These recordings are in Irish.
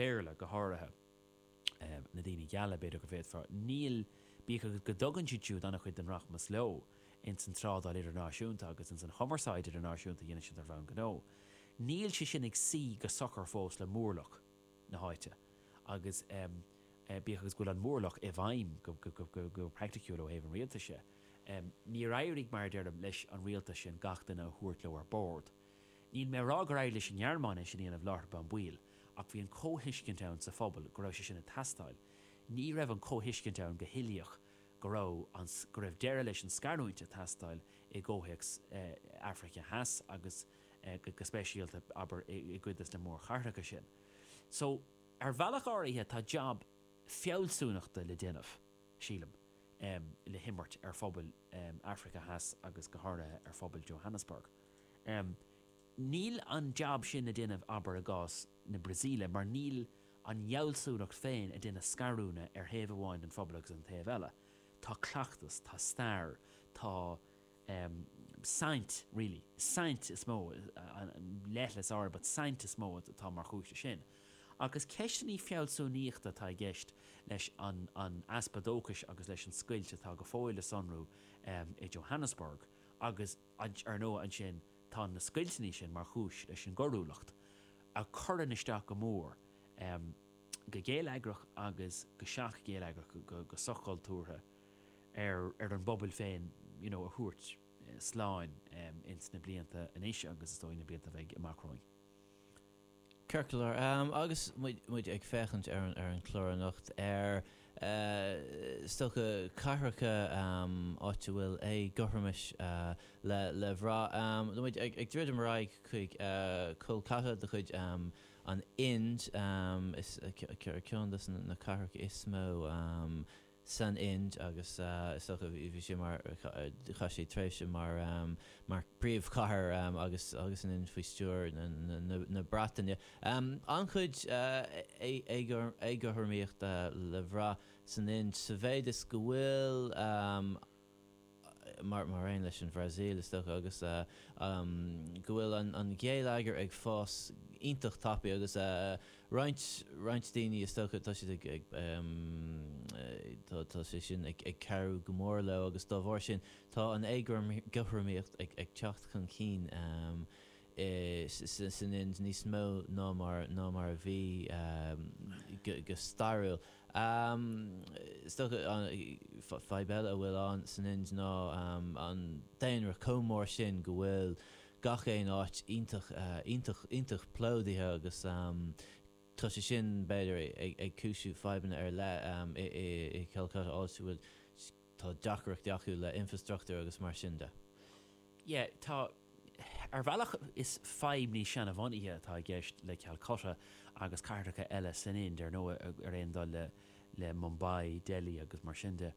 Béarla, go háirithe, na daoine geala, b'fhéidir go bhféadfá, níl, bíodh is go dtugann siad siúd an-chuid den rachmas leo ins an trádáil idirnáisiúnta agus ins an chumarsáid idirnáisiúnta a dhéanann siad ar bhonn gnó, níl sé sin ag suí go socair fós le móramh na háite agus bíodh is go bhfuil an móramh i bhfeidhm go praiticiúil ó thaobh an rialtais de, níor éirigh, mar a deirim, leis an rialtas sin gach duine a thabhairt leo ar bord. Níl mé a rá gur éirigh leis an nGearmáin é sin a dhéanamh láithreach bonn baill, ach bhí an comhthuiscint ann sa phobal go raibh sé sin ag teastáil. Ní raibh an comhthuiscint ann go huilíoch go raibh an, go raibh deireadh leis an scarúint ag teastáil i gcomhthéacs Africa Theas agus go speisialta, abair, i gcuid de na mórchathracha sin. So, ar bhealach áirithe tá jab fealsúnachta le déanamh, sílim, le himirt ar phobal Africa Theas agus go háirithe ar phobal Johannesburg. Níl an jab sin le déanamh, abair, i gcás na Brasaíle, mar níl an fhealsúnacht féin ag déanamh scarúna ar thaobh amháin den phobal agus an taobh eile. Tá cleachtas, tá stair, tá saint, really, saint is mó, leithligh, sorry, but saint is mó atá mar chúis leis sin. Agus ceisteanna fealsúnaíochta atá i gceist leis an easpa dóchais agus leis an scoilt atá go fóill le sonrú i Johannesburg agus Ar ndóigh ansin tá na scoilteanna sin mar chúis leis an gcoiriúlacht a chuireann isteach go mór, go geilleagrach agus go soch-gheilleagrach, go soch-chultúrtha ar an bpobal féin you know a thabhairt slán ins na blianta anois agus is dóigh na blianta a bheidh amach romhainn. Circular agus muid ag féachaint ar an chlár anocht ar scata cathracha áit a bhfuil éagothromas le bhraith. Tá muid ag druidim ar aghaidh chuig Kolkata de chuid an Ind, ceann de na cathracha is mó. san Ind agus is dócha bhí sé mar chaith sé tréimhse mar mar príomhchathair agus agus an Ind faoi stiúir na Breataine. An-chuid éagothromaíochta le bhraith san Ind sa mhéid is go bhfuil. mar mar aon leis an Bhrasaíl, is dócha, agus go bhfuil an gheilleagar ag fás iontach tapaidh agus roinnt roinnt daoine, is dócha, tá siad ag tá sé sin ag ag cabhrú go mór leo agus dá bharr sin tá an éagothromaíocht ag ag teacht chun cinn. san Ind níos mó ná mar ná mar a bhí go go stairiúil. Is dócha an fadhb eile a bhfuil ann san Ind ná an daonra chomh mór sin go bhfuil gach aon áit iontach iontach iontach plódaithe agus tá sé sin b'fhéidir ag ag cúisiú fadhbanna ar leith i i Calcutta áit a bhfuil tá deacrachtaí acu le infreastruchtúr agus mar sin de. Ie, tá. Ar bhealach, is fadhb níos seanbhunaithe atá i gceist le Calcutta agus cathracha eile san Ind, ar ndóigh, ar aon dul le Mumbai, Delhi agus mar sin de.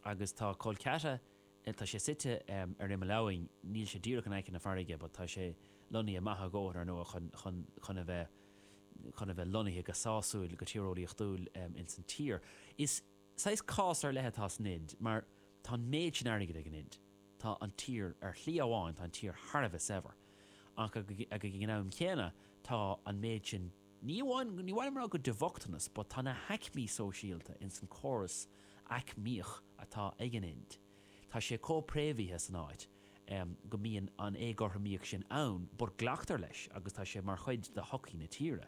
Agus tá Calcutta, tá sé suite ar imeall abhainn, níl sé díreach in aice na farraige but tá sé lonnaithe maith a dhóthain, ar ndóigh, chun, chun, chun a bheith, chun a bheith lonnaithe go sásúil, go tíreolaíochtúil insan tír. Is. Saghas cás ar leith atá san Ind mar tá an méid sin airgid ag an Ind. Tá an tír, ar shlí amháin, tá an tír thar a bheith saibhir. Ach ag an am céanna tá an méid sin, ní amháin, ní maith liom a rá go de bhochtanas but tá na haicmí sóisialta in san córas aicmíoch atá ag an Ind, tá sé chomh préamhaithe san áit em go mbíonn an éagothromaíocht sin ann but glactar leis agus tá sé mar chuid de shochaí na tíre.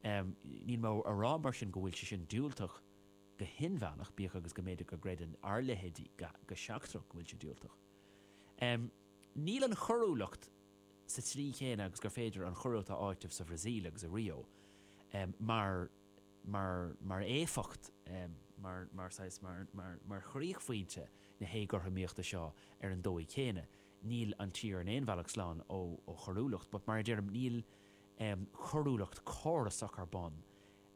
Em níl mé a rá mar sin go bhfuil sé sin diúltach, go hinmheánach, bíodh agus go mb'fhéidir go gcreideann ár leithéidí go seachtrach go bhfuil sé diúltach. Níl an choiriúlacht sa tslí chéanna agus gur féidir an choiriúlacht a áiteamh sa Bhrasaíl agus i Rio mar éifeacht, saghas mar chríochphointe na héagothromaíochta seo ar an dóigh chéanna. Níl an tír in aon bhealach slán ó choiriúlacht, but mar a deirim, níl coiriúlacht córasach ar bun.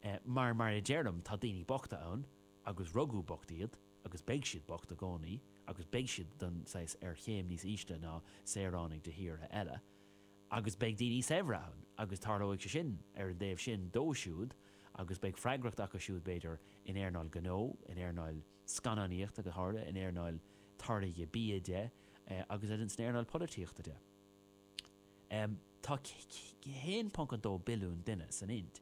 É, mar, mar a deirim, tá daoine bochta ann agus rugadh bocht iad agus beidh siad bocht i gcónaí agus beidh siad den saghas ar chéim níos ísle ná saoránaigh de thíortha eile agus beidh daoine saibhre ann agus tarlóidh sé sin ar an dtaobh sin dó siúd agus beidh freagracht acu siúd b'fhéidir in earnáil gnó, in earnáil scannánaíochta go háirithe, in earnáil táirgeadh bia de agus in san earnáil polaitíochta de. Tá 1.2 billiún duine san Ind.